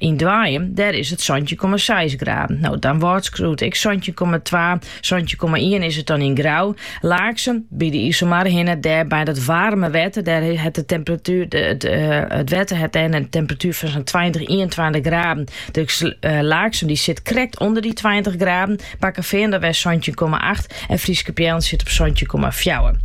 Yn Doanjum, dêr is it santjin komma seis graden. No, Damwâld skriuwt ek santjin komma twa, santjin komma ien is it dan yn Grou. Laaksum, by de Iselmar hinne, dêr by dat waarme wetter, dêr, it wetter hat dêr in temperatuer fan sa'n tweintich, ienentweintich graden. Dus Laaksum dy sit krekt ûnder dy tweintich graden. Bakkefean dêrwei santjin komma acht en Fryske Peallen sit op santjin komma fjouwer.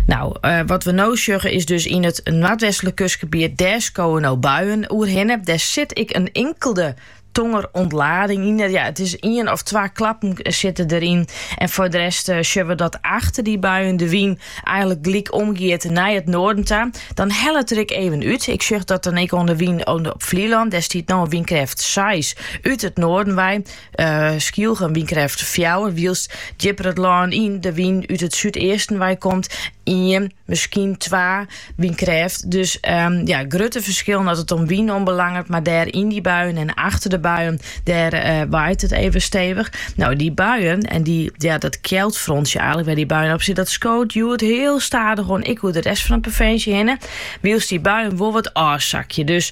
No, eh, wat we no sjogge is dus yn it noardwestlik kustgebiet, dêr skowe no buien oerhinne. Dêr sit ek in inkelde tongerûntlading yn. Ja, it is ien of twa klappen eh, sitte deryn. En foar de rest sjogge we dat achter dy buien de wyn eigenlik gelyk omgiet nei it noarden ta. Dan hellet er ek even út. Ik sjoch dat dan ek oan de wyn op Flylân. Dêr stiet no in wynkrêft 6 út it noarden wei. Skylge wynkrêft fjouwer wylst djipper it lân yn de wyn út it súdeasten wei komt, ien, miskien twa wynkrêft. Dus ja, grutte ferskillen as it om wyn oanbelanget, mar dêr yn dy buien en achter de buien, dêr waait it even stevich. No, dy buien en dy, ja, dat kjeldfrontsje eigenlik wêr dy buien op sit, dat skoot hjoed hiel stadichoan, ek oer de rest fan de provinsje hinne, wylst dy buien wol wat ôfsakje. Dus.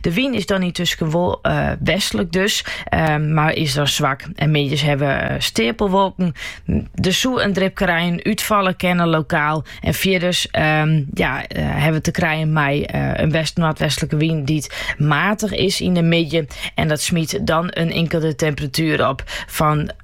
De wyn is dan yntusken wol eh, westlik dus, eh, mar is dan swak. En middeis hawwe we eh, steapelwolken. Der soe in dripke rein útfalle kinne lokaal. En fierders ehm, ja, hebben we te krijgen met een west-noordwestelijke wind die matig is in de midden. En dat smyt dan in inkelde temperatuer op fan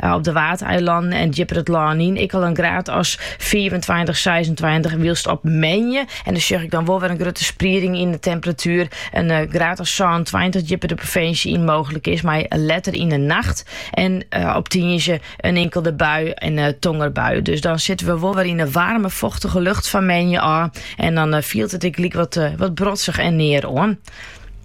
Op de Waadeilannen en djipper it lân yn ek al in graad as 25, 26, wylst op moandei, en dan sjoch ik dan wol wer in grutte sprieding yn de temperatuer, in eh, graad as 26 djipper de provinsje yn mooglik is, mei letter yn de nacht en eh, op tiisdei in inkelde bui en eh, tongerbui. Dus dan sitte we wol wer yn de waarme, fochtige lucht fan moandei ôf en dan fielt it eigenlik wat, wat brodzich en near oan.